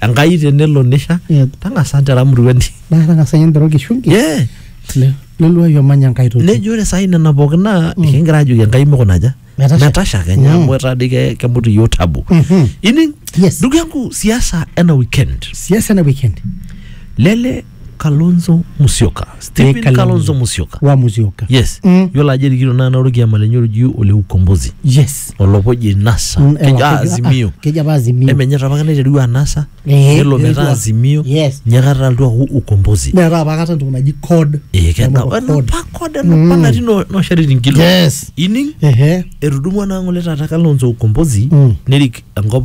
enkai tenelo nisha Yeah. tang'asa ntera muruani naa tang'asa ninye nterru kishungi yeah. le- leluai omanya enkai toki nejo ore saai nena pookin naa ekingira ajoki enkai mikunaja Metasha. metasha kenya Mm. amu etaa dii ke- kemut iyiok tabu Mhm. ining Yes. ndugu yangu siasa ena weekend siasa ena weekend lele kalonzo musyoka stephen Kalonzo. kalonzo musyoka wa musyoka yes Mm. yiolo ajo erikito naa naorokiama lenye oji ole ukombozi yes olopoji nasa Mm, ewa, kejo ah, kejo- azimio ah, kejo apa azimio emenye apa kata naitereu anasa Eh, nelo metaa etua. azimio Yes. nyakata altu aku ukombozi neetae apa kata entoki naji code Eh, kena- Nemoto ena code. pa kode ena pa natii no- nosharitin kilo yes ining ehe etudumua naa ng'ole taata kalonzo ukombozi Mm. nerik enkop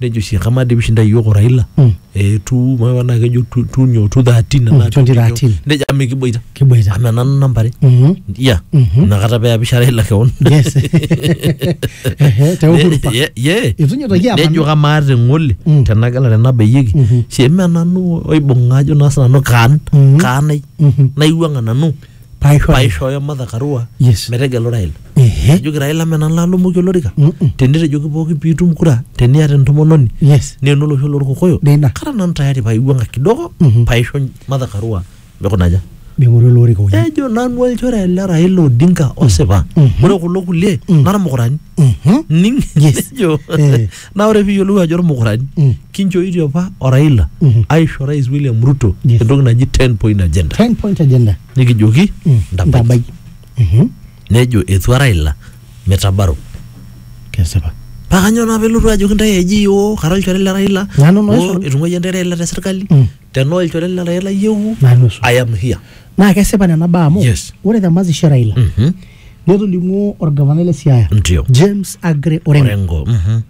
nejo oshi kamaa dii pishinda iyiook o Raila Mm. eh, tu mawa naa kejo tu tu nyoo tu thirteen Mm, enaa tu nyoo. 2013. nejo amu mikiboita Kiboita. amu enana namba are Mhm. ya Mhm. inakata peapisha Raila kewon Yes. Ehe, te Uhuru Park. Ye- ye. Itu nyoo toki apa. nejo kamaa te ng'ole Mm. tenagala tenabayieki Mhm. sheme nanu oibung'a ajo naa sinanu kaan Mhm. kaanai Mhm. naiwuang'a nanu paisho paishooyo Martha Karua Yes. metegelu Raila. ehe Ejoki Raila mena lalomoki olorika. Mm-mm. Tenitejoki pooki piitum kura teniata entomononi yes naa enolosho lorkokoyo Neina. kara nanu tayari paiwuang'a kidogo Mhm. paisho Martha Karua mikunaja. ming'oru ele orika oje Ejo nanu olchore le Raila Odinga osipa. Mhm. Ore kulo kulie Mhm. nara mukurani. Mhm. Ning Yes. ejo Eh. Naa ore piiyiolou ajo ormukurani Mm. kinchooitie apa o Raila Mhm. aisho Rais William Ruto Yes. entoki naji 10 point agenda 10 point agenda. nikijoki Mm. ntabai. Ntabai. Mhm. Nejo etua Raila mitabaro. Kesipa. Paa kanyoo naa pelotu ajoki ntae eji yoo kara olchore le Raila Nanu naisho. oo etung'uayie ntae Raila te serkali Mm. tenaa olchore le Raila iyieu Nanu osu. I am here. naa kesipa nena baa amu Yes. ore te mazishi e Raila Mhm. netolimuo orgavanai le Siaya Ndio. James Agre Orengo Orengo. Mhm.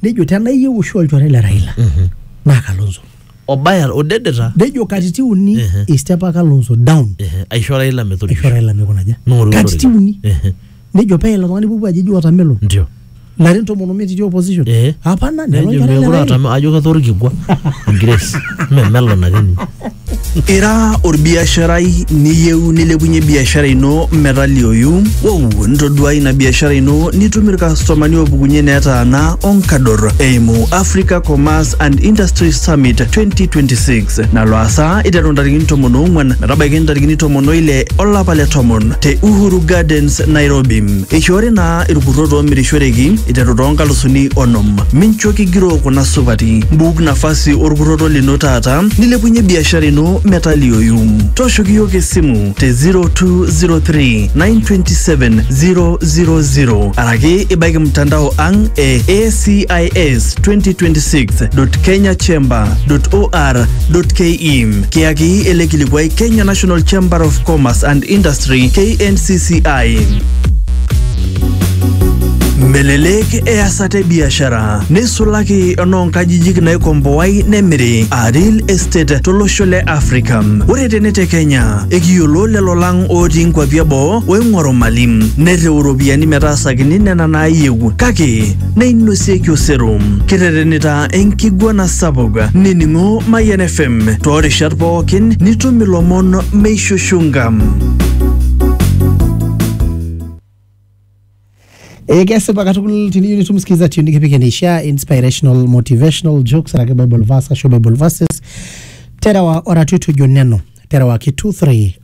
nejo tenaa iyieu oshi olchore le Raila naa Kalonzo Obaya odedeta nejo katitin uni Ehe. eistepa Kalonzo down ehe, aisho Raila aisho metodisho. Raila mikunaja Ning'oru katitin olorika. uni Ehe. nejo pee ilo tung'ani pupu aji eji watermelon ndio larin tomon omiet itii opposition Eh. hapana nelo nejo nkera mekure leraini. atam ajo kata orkikua grace memelon ake ninye Ira orbiasharai niyieu nilepunye biashara ino metalioyu? Wow, ntoduai ina biashara ino nitum irkastomani oopukunye netaana onkador eimu Africa Commerce and Industry Summit 2026. nalo asaa iteru ntarikini tomon oong'wan metabaiki ntarikini tomon oile olapa le tomon te Uhuru Gardens, Nairobi. Eishoori naa irkurrot oomirishoreki iteru too nkalusuni onom. Mincho kigiroo kuna supati. Mbuuk nafasi olkurroto lino taata nilepunye biashara ino metaliooyu. Tooshoki iyiook esimu te 0203 927 000 araki ibaiki mtandao ang e ACIS 2026.kenyachamber.or.ke kiyaki ele kilikuai Kenya National Chamber of Commerce and Industry KNCCI. Melelek easata e biashara neisulaki enoonkajijik naikomboai nemiri aa real estate tolosho le Africa. Ore tene te Kenya ekiyiolo lelo lang otii nkuapi eboo oing'oru mali nerriu iropiyiani metaasakini nena naayieu kake neinosieki osero kiterenita enkiguana sapuk nining'o Mayian FM toorishat pookin nitum ilomon meishushunga. Eh, kesipa katukul tiniyieu nitum sikiza tune nikipik eneishaa inspirational motivational jokes araki bible verse ashu bible verses terewa oratioti ojo neno terewaki 23